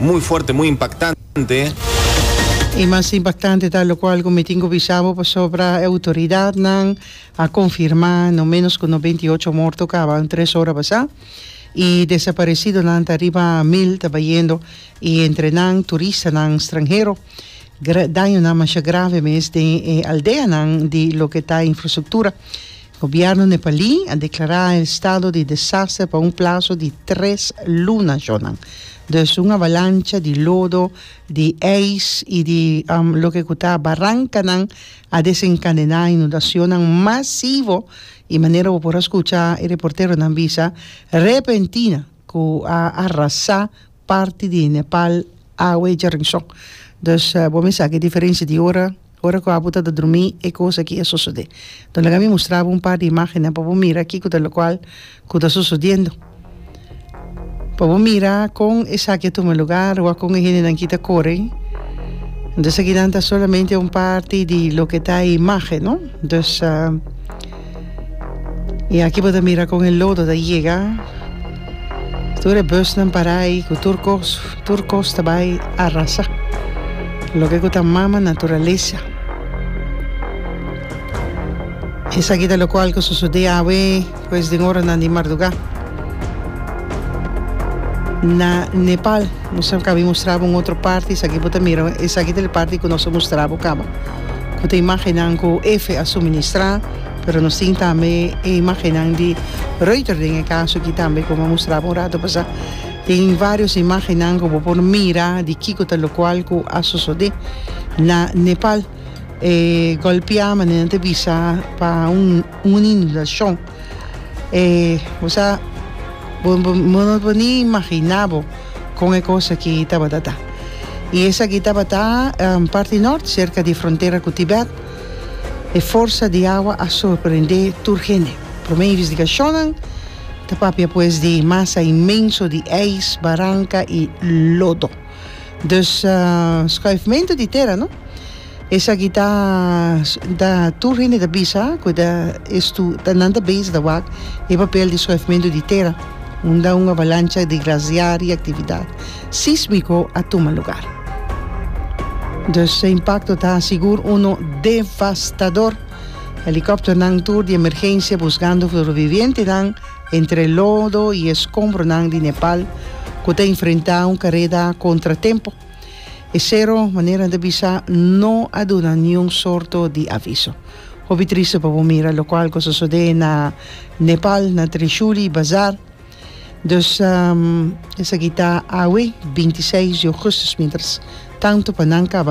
Muy fuerte, muy impactante. E mas impactante ta locual cu mi tin cu bisa bo pasobra e autoridadnan a confirma no menos cu no beinti ocho morto caba un tres ora basa y desaparecidonan ta riba mil ta bayendo y entre nan turistanan stranhero. Dañonan masha grave mes den e aldeanan di loke ta infrastructura. Gobièrnu nepalí a deklará estado di desaster pa un plaso di tres luna, Jonan. Dus un avalancha di lodo, di ijs i di loke ku ta barankanan a desenkadená inundasionnan masivo i manera bo por a skucha e reporteronan bisa, repentina ku a arrasá parti di Nepal awe djerinshon. Dus bo mester hasi diferensia di ora. Ora ku abu tabata drumí e kos akí a sosodé. Lo laga mi mustra bo un par di imágennan pa bo mira kiko ta lokual ku ta sosodiendo. Pa bo mira kon esaki a tuma lugar wak kon e hendenan akí ta kore. Entonces, akinan ta solamente un parti di loke ta e imágen, no? Entonces. Y aki bo ta mira con e lodo ta yega. Tur e busnan para ahi cu tur cos, tur cos ta bay arrasa. Loke cu ta mama naturalesa. Esaki ta locual cu sosode awe pues den oranan di marduga. Na Nepal nos a cabi mustra bo un otro parti, esaki bo ta mira, esaki ta e parti cu nos a mustra bo caba. Cu ta imagennan cu Efe a suministrá, pero nos tin tambe e imagennan di Reuter den e caso aki tambe cu bo a mustrabo un rato pasá. Tin varios imagennan cu bo por mira di kico ta locual cu a sosode na Nepal. E golpia mane nan ta bisa pa un. Un inundacion. E osa bo no por ni imagina bo con e cos aki tabata ta. Y esaki tabata um, parti nort cerca di frontera cu Tibet. E forsa di awa a sorprende tur hende. Prome investigacionnan ta papia pues di masa inmenso di ijs, baranca y lodo. Dus uh, schuifmento di tera no. Esaki ta ta tur hende ta bisa ku ta estu ta nan ta base ta wak e papel di schuifmento di tera unda un avalancha di glasiar i aktividat sísmiko a tuma lugar. Dus e impakto ta sigur uno devastador. Helikòpternan tur di emergensia busgando sobrevivientenan entre lodo i eskombronan di Nepal ku ta enfrentá un kareda kontratempo. E sero, manera ta bisa, no a duna niun sorto di aviso. Hopi triste pa bo mira locual cu a sosode na Nepal, na Trishuli Bazar. Dus esaki ta awe, binti seis di augustus, mientras tanto pa nan caba